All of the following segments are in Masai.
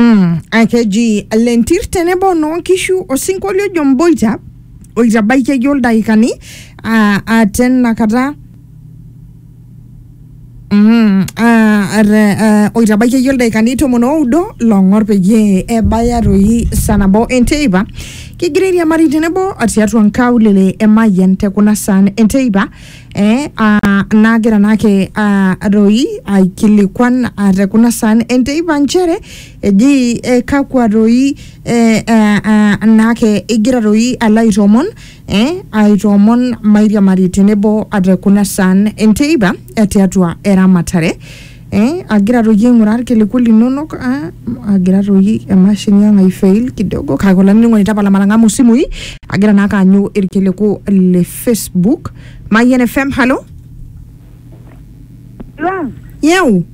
Mm, akeji lentir tenebo noonkishu osinkolio ojo mboita oitabaikieki oldakikani aa aa tenakata Mm, ah, ar- ah, oitabaikieki oldakikani tomon oudo long'or peyie ebaya toi saa nabo enteipa kigira airiamari tenebo tiatua nkaulele emayian te kuna saan enteipa eh, ah, nagira naake ah, doi aikilikuan ah, te kuna saan enteipa nchere eji eh, kakwa doi eh, eh, ah, naake igira doi alo aitoomon eh, aitoomon mairiamari tenebo ah, te kuna saan enteipa eh, tiatua eramatare eh, agira toi aing'uraa irkiliku linonok ah, agira toi emashini ang aifail kidogo kake olainining'oni tapala matang'amu isimui agira naa kaanyu irkiliku le facebook mayian fm halo Long, yeu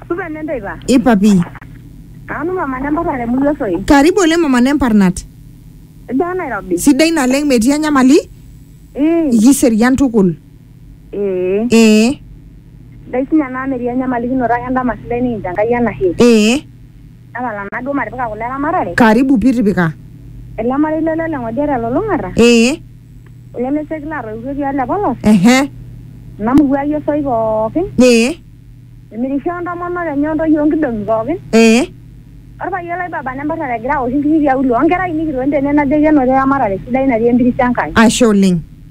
supa nenteipa. ipapi Nanu mama nempata te murua soi. karibu oleng mama nemparnat Ijaa Nairobi. sidai naleng metii enyamali Ee, ikiserian tukul Ee. Ee. Ndai sinye anaa metii enyamalikinoto ake endama sidai nikincho Enkai enashe. Ee. Tapala naa duo matipika kule eramatare. Karibu pii tipika. Ele marei le Lole Ng'odia te Lulung'ata. Ee. Ele le Seki laatoiwutuo etii ole Polos. Ehe. Ena murua ai osoi pookin. Ee. Timirisho o ntomonok enye o ntoyie o nkidong'i pookin. Ee. Olpayian lai Baba nemparrare egira aosh inkiri tiauluo o nkera ainei kitoni tene najoki enotito eramatare sidai natii empiris Enkai. Ashe oleng.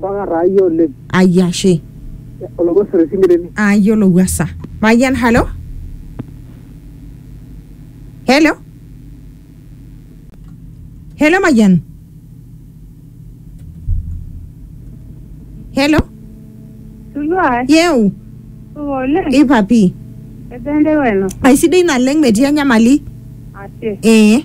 Bong'a taa iyie oleng. Ai ashe. Ologosore Isinkireni. Ayiolo Wasa. Mayian, halo? Hello? Hello, Mayian? Hello? Tulua Yeu, supa oleng. ipapi. Ebende weno. Aisidai naleng metii enyamali. Ashe. Ee.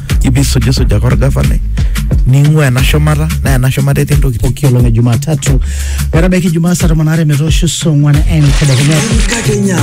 ibisujisujaka orgavanai ning'ua ena shumata naa ena shumata etii ntokitin pooki olong e Jumatatu metabaiki Jumaa saa tomon aare metoosho saa ong'wan entedekenya. Enkakenya.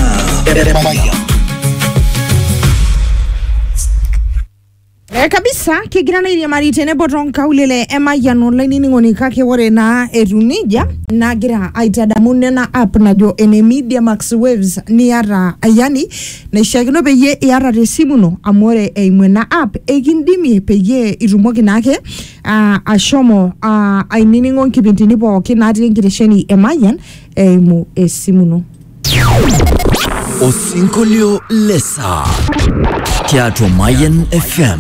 Eh, kabisa kigira naa airiamari tenebo toonkaulele emayian olainining'oni kake ore naa etu nejia nagira aitadamu nena app najo ene media max waves niata yani naishiakino peyie iata te simu ino amu ore eimu ena app ekindimie peyie itumoki naake ah, ashomo ah, ainining'o nkipindini pookin natii enkitesheni e Mayian eimu esimu ino. Osinkolio le saa tiatua Mayian FM.